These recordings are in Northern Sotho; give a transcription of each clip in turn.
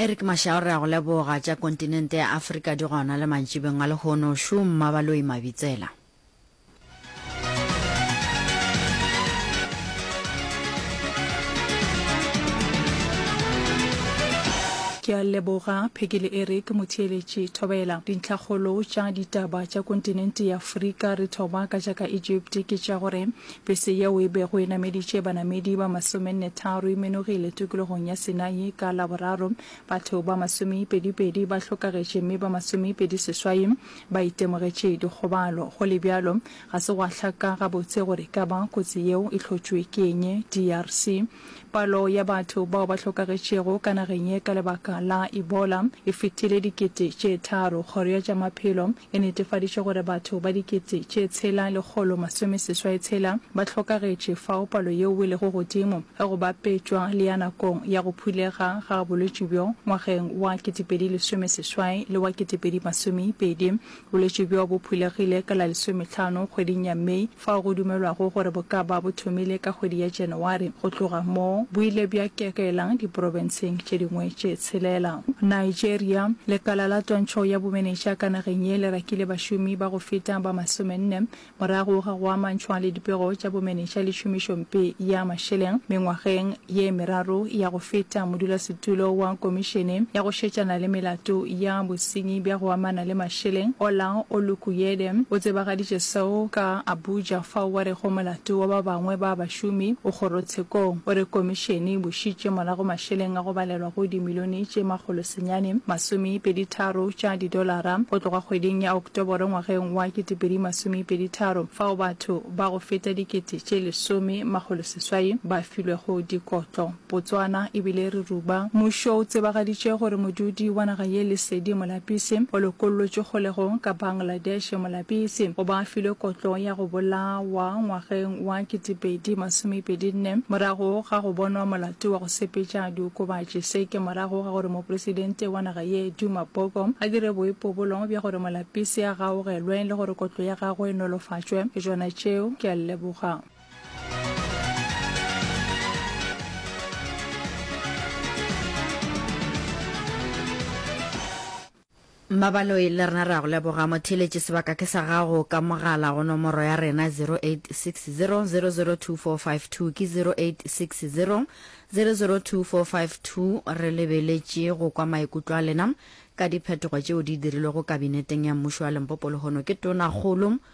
Eric Mashao re a go leboga tša kontinente ya Afrika di gona le mantšibeng a lehono šo mmabaloi mabitsela. ke a leboga phekele eric motheeletši thobela dintlhakgolo tša ditaba tša kontinente ya afrika re thoba ka tša ka egypt ke tša gore Bese yeo e bego e nameditše banamedi ba masomennetharo e menogile tokologong ya Sinai ka Laboraro. Batho ba masomeipedipedi ba hlokagetše mme ba masomeipediseswai ba itemogetše dikgobalo. Go le bjalo, ga se gwa hlaka gabotse gore e ka ba kotsi yeo e hlotšwe ke eng. DRC. Palo ya batho bao ba hlokagetšego ka nageng ye ka lebaka la Ebola e fetile dikete tše tharo. Kgoro ya tša Maphelo e netefaditše gore batho ba dikete tše tshela lekgolo masomeseswai tshela ba hlokagetše, fao palo yeo e lego godimo ge go bapetšwa le ya nakong ya go phulega ga bolwetši bjo ngwageng wa ketepedi lesomeseswai le wa ketepedi masomeipedi. Bolwetši bjo bo phulegile ka la lesometlhano kgweding ya May. fao go dumelwago gore bo ka ba bo thomile ka kgwedi ya Janawari. Go tloga moo, bo ile bja kekela diprobenseng tše dingwe tše tshelela. Nigeria, Lekala la Twantšho ya Bomenetša ka nageng ye le rakile bašomi ba go feta ba masomenne morago ga go amantšhwa le dipego tša bomenetša le tšhomišompe ya mašeleng mengwageng ye meraro ya go feta modulasetulo wa Komišene ya go Šetšana le Melato ya Bosenyi bja go Amana le Mašeleng, Ola Olukuyede, o tsebagaditše seo ka Abuja fao a rego molato wa ba bangwe ba bašomi o kgorotshekong. O re Komišene e bušitše morago mašeleng a go balelwa go dimilione tše makgolo senyane masomepedi tharo tša didolara go tloga kgweding ya Oktoboro ngwageng wa ketepedi masomepedi tharo fao batho ba go feta dikete tše lesome makgolo seswai ba filwego dikotlo Botswana e bile re ruba. Mmušo o tsebagaditše gore modudi wa naga ye Lesedi Molapisi o lokollotšwe kgolegong ka Bangladesh. Molapisi o ba filwe kotlo ya go bolawa ngwageng wa ketepedi masomepedi nne morago ga go bonwa molato wa go sepetša diokobatši. Se ke morago ga gore mopresidente wa naga ye Duma Boko a dire boipobolo bja gore Molapisi a gaogelwe le gore kotlo ya gagwe e nolofatšwe. Ke tšona tšeo. Ke a leboga. Mmabaloi le rena re a go leboga. Motheeletši sebaka ke sa gago ka mogala go nomoro ya rena 0860002452 ke 0860002452. Re lebeletše go kwa maikutlo a lena ka diphetogo tšeo di dirilwego Kabineteng ya Mmušo wa Limpopo lehono ke Tonakgolo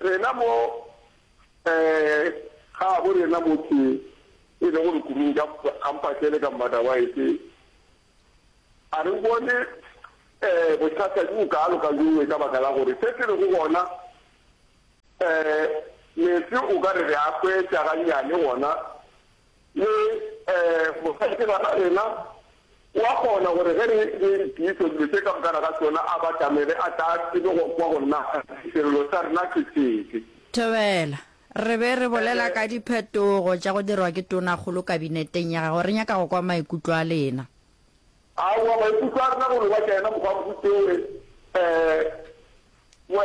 Rena mo gabo rena motse e lego lekurung ka Mpatlele ka Mmadawaese, a re o bone bothata bjo bokaalo ka bjongwe ka baka la gore se se lego gona meetse o ka re re a hwetša gannyane gona Le mosadi ke ngwana rena, o a kgona gore ge re re tiiše dilo tše ka moka ga tšona a batamele, a tla a tsebe go kwa go nna sello sa rena ke sefe. Thobela, Re be re bolela ka diphetogo tša go dirwa ke Tonakgolo Kabineteng ya gago. Re nyaka go kwa maikutlo a lena. Aowa, maikutlo a rena go no ba ka yena mokgwabotse we, we.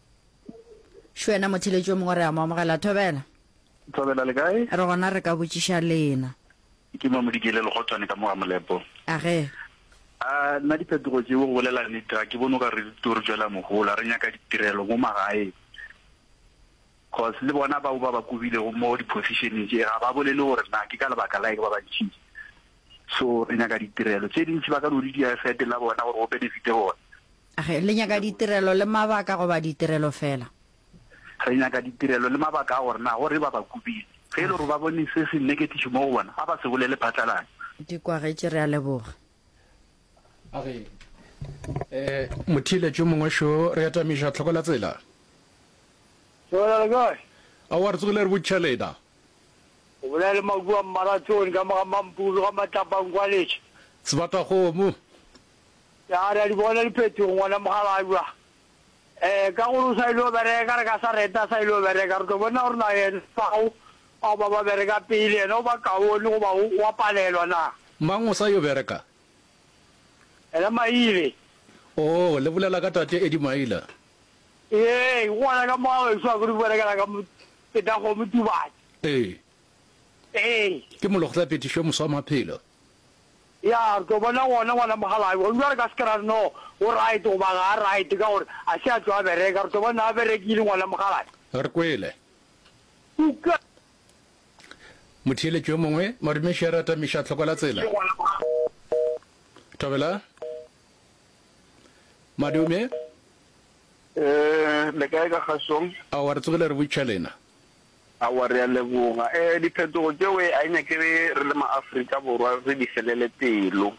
Šo yena motheletši yo mongwe re a mo amogela. Thobela. Thobela, le kae? Re gona re ka botšiša lena. Ke Mamodikele Legotwane ka mo ga Molepo. Age. A nna diphetogo tšeo go bolela nnete ga ke bone o ka re di tlo re tšwela mohola. Re nyaka ditirelo mo magaeng. Cause le bona bao ba ba kobilego mo di-position-eng tše ga ba bolele gore na ke ka lebaka la eng ba ba ntšhitše. So re nyaka ditirelo tše dintši ba ka no di dira e fete la bona gore go benefit-e bona. A re, Le nyaka ditirelo le mabaka goba ditirelo feela? Re nyaka ditirelo le mabaka a gore na go re ba ba kubile. Ge e le gore ba bone se se nneketiše mo go bona, a ba se bolele phatlalatša. Di kwagetše, re a leboga. A re, E, motheeletši yo mongwe šo, re atamiša tlhoko la tsela. Sehwela le kae? Aowa, re tsogile re botšiša lena. O bolela le Makuwa Mmaratsoni ka mo ga Mampuru ga Matlapankwaletše. Sebatakgomo. Ya re a di bona diphetogo ngwana Mogalajwa. Eh ka gore o sa ile go bereka re ka sa reta a sa ile go bereka re tlo bona gore na yena bao bao ba ba bereka pele yena o ba kaone go ba o wa palelwa na. Mang o sa yo bereka? Yena Maile. Oh le bolela ka tate Eddie Maila. Ee ke gona ka mo a weso a kore berekela ka Petagomo Tubatse. Ee. Ee. Ke mologtla petišo moswa maphelo. Ya, re tlo bona gona, ngwana Mokgalabje. Gona bjale re ka se ke ra re no o right goba ga a right ka gore a se a tlo a bereka. Re tlo bona a berekile ngwana Mokgalabje. Re kwele. Uka. Motheeletši yo mongwe, Morimiši a re atamiša tlhoko la tsela. Thobela. Madume. Ee, le kae ka kgasong? Aowa, re tsogile re butšha lena. Aowa, re a leboga. E, diphetogo tšeo e, a e nyake re le maAfrika Borwa re di felele pelo.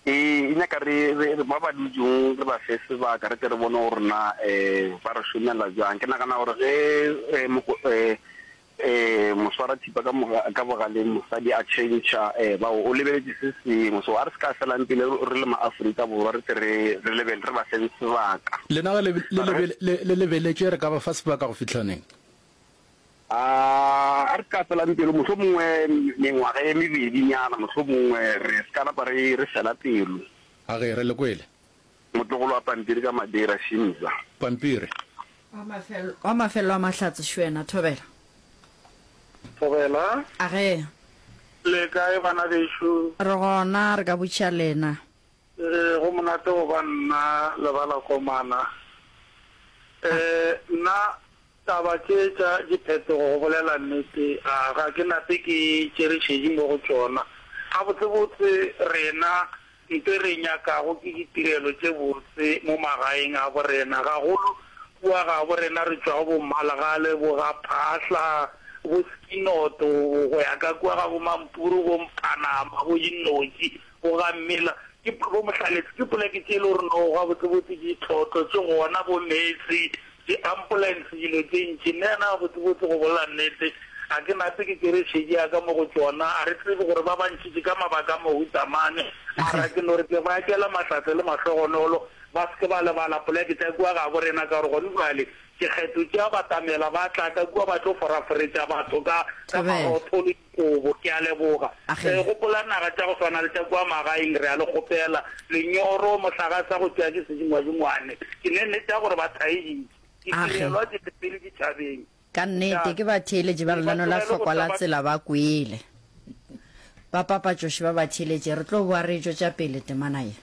E, e nyaka re, re, re ba ba dutšong re ba fe sebaka re tle re bone gore na e, ba re šomela bjang. Ke nagana gore ge e, moko, e, e, moswara, tšhupa ka moga, ka bogaleng mosadi a tšhentšha eh, bao o lebeletše se sengwe, so a re se ka felang pele re, re le ma-Afrika Borwa re tse re, re lebele, re ba feng sebaka. Lena ge le, le, lebe, le, le lebeletše re ka ba fa sebaka go fihla neng? Ah, a re se ka felang pelo, mohlomongwe mengwaga e mebedinyana, mohlomongwe re se ka napa re, re fela pelo. Age re le kwele. Motlogolo wa pampiri ka Madeira, Shimza. Pampiri. Wa mafelelo a Mahlatse, Shwena. Thobela. Thobela. A ge. Le kae bana bešo? Re gona, re ka botša lena. Ee, go monate go ba nna, Lebalakomana. Ee, nna. Taba tše tša diphetogo, go bolela nnete, a ga ke nape ke tšere šedi mo go tšona. Gabotsebotse, rena nto e re nyakago ke ditirelo tše botse mo magaeng a bo rena, gagolo kua ga bo rena re tšwago bo Mmalegale, bo ga Phahla, bo Skinoto, go ya ka kua ga bo Mampuru, bo Mphanama, bo Dinnotši, Go ga mmila ke bo mohlaletsi ke poleke tše e le gore no gabotsebotse ke ditlhotlo tše gona bo meetse di ambulance dilo tše ntši nne yana gabotsebotse go bolela nnete ga ke nape ke tšere šedi ya ka mo go tšona a re tsebe gore ba bantšitši ka mabaka a mohuta mane mara ke no re ke ba tšela matlhatse le mahlogonolo ba se ke ba lebala poleke tša kua ga borena ka gore gone bjale ke kgetho tšea batamela ba tla ka kua ba tlo foraforetša batho ka ka marotho le Kobo, Ke a leboga. Re gopola naga tša go swana le tša kua magaeng, re a le kgopela, lenyoro, mohlagasa go tšwa ke sedingwadingwane. Ke nennete ya gore ba thaeditšwe. Ditirelwa di re pele ditšhabeng. Ka nnete, ke batheeletši ba lenaneo la Hlokwa la Tsela ba kwele. Bapapatšoši ba batheeletši, re tlo boa re e tšwetša pele temana ye.